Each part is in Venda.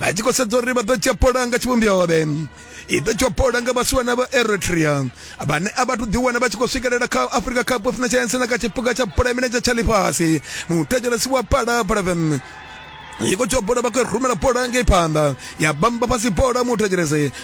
vha tshi khou sedza uri vha ḓo dzhia pola nga tshivhumbiovhe i ḓo dzhia pola nga vhasiwana vha eritrea vhane a vhathu ḓiwana vha tshi khou swikelela kha africa cup of nations na kha tshiphuga tsha bola ya milenzhe tsha ḽifhasi muthetshelesi wa pala palaven yiko dzhia bola vha khou rumela bola ngei phanḓa ya bamba fhasi bola muthetshelesi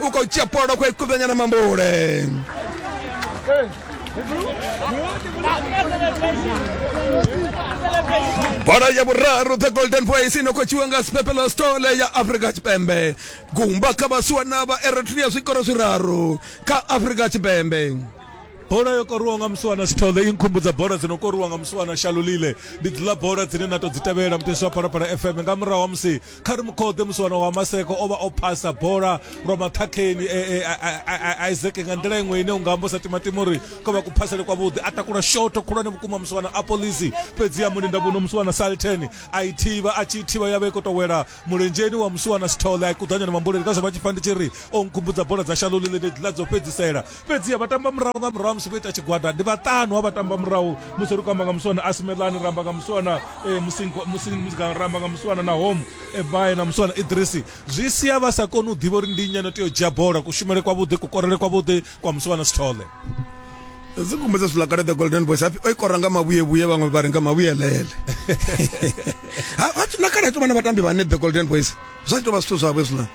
u khou dzhia polo khou i kuvhenya na mambule bola ya vhuraru the golden voice ino khou tshiwa nga sipepelo stole ya afrika tshipembe gumba kha vhasuwa na vha eritrea zwikoro zwiraru kha afrika tshipembe bola yo koriwa nga musiwana sithole i nkhumbudza bola dzi no koriwa nga musiwana shalulile ndi dziḽa bola dzine na to dzi tevhela muteshi wa phalaphala fm nga murahu ha musi kha ri mukhode musi wana wa maseko o vha o phasa bola lwa maṱhakheni e, e, a iseke nga nḓila iṅwe ine u nga ambosa timatima uri ko vha kuphasele kwavhuḓi a takula shoto khulwane vhukuma musi wana apolisi fhedzi ya mulinda vhuno musi wana salten a i thivha a tshi thivha ya vha i khou tou wela mulenzheni wa musi wana sithole a i kuḓanyana mambuleli ka zwo vha tshi pfa ndi tshi ri o nkhumbudza bola dza shalolile ndi ḽa dzo fhedzisela Fhedziha vhatambamurahu nga murahu ha musi vho ita tshigwada ndi vhaṱanu ha vhatambamurahu musi ri khou amba nga muswana asimelani ra amba nga muswana eh, musingo musi musi- ra amba nga muswana na home ebae na muswana idrisi zwi sia vha sa koni u ḓivha uri ndi nnyi ano tea u dzhia bola kushumele kwavhuḓi kukorele kwavhuḓi kwa muswana sithole dzi kumedza zwiḽa kale the golden boys hapfi o i kora nga mavhuyevhuye vhaṅwe vha ri nga mavhuyelele Ha- ha- na kale ha tou vha na vhatambi vhane the golden boys zwa tshi tou vha zwithu zwavho hezwiḽa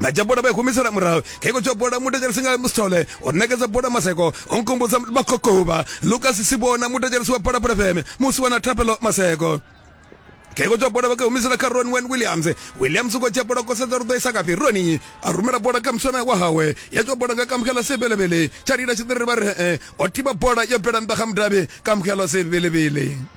na dzhia bola vha i humisela murahu kheko tsho bola mutetshelesi nga musithole o nekedza bola maseko o nkumbudza makokovha lukas sibona mutetshelesi wa bola pulefeme musi wana thapelo maseko kheko tsho bola vha ka humisela kha ron wen williams williams u khou dzhia bola kosedza ri ḓo isa kafhi roni a rumela bola kha muswana wa hawe ya tsho bola nga kamukela sebelebele tsha lila tshiḓiriri vha ri e o thiba bola yo bvela nnḓa kha mudavhi kamukela sebelebele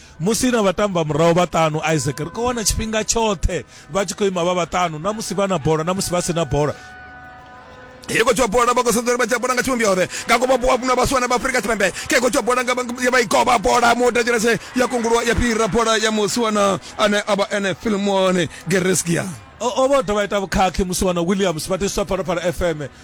Musi na vhatambamurahu vhaṱanu, Isaac, ri khou wana tshifhinga tshoṱhe vha tshi khou ima vha vhaṱanu, na musi vha na bola, na musi vha si na bola. He kotswa bola ba go sendere ba tsapona nga tshumbi ore ka go ba bua buna ba swana ba Afrika Tshipembe ke kotswa bola nga ya ba ikoba bola mo da jerese ya kongulwa ya pira bola ya muswana ane aba ene Filmone Gereskia o vho dovha ita vhukhakhi musi wana williams vha tiswa phalaphala fm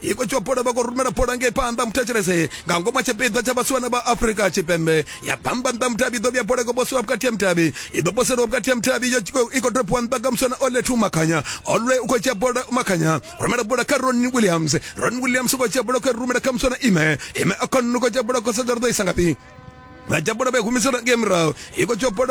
iko tsho bola vha khou rumela bola ngei phanḓa muthetshelese nga ngomu tshipiḓa tsha vhasiwana vha afrika tshipembe ya bamba nḓa mudavhi iḓo vhuya bola i khou posiwa vhukati ha mudavhi i ḓo poseliwa vhukati ha mudavhi yo i khou dropiwa nḓa nga musiwana olethu makhanya olwe u khou dzhia bola makhanya rumela bola kha ron williams ron williams u khou dzhia bola khou rumela kha musiwana ime ime a khou dzhia bola khou sedza ri ḓo isa ngafhi vha dzhia bola vha i humisela ngei murahu i khou dzhia bola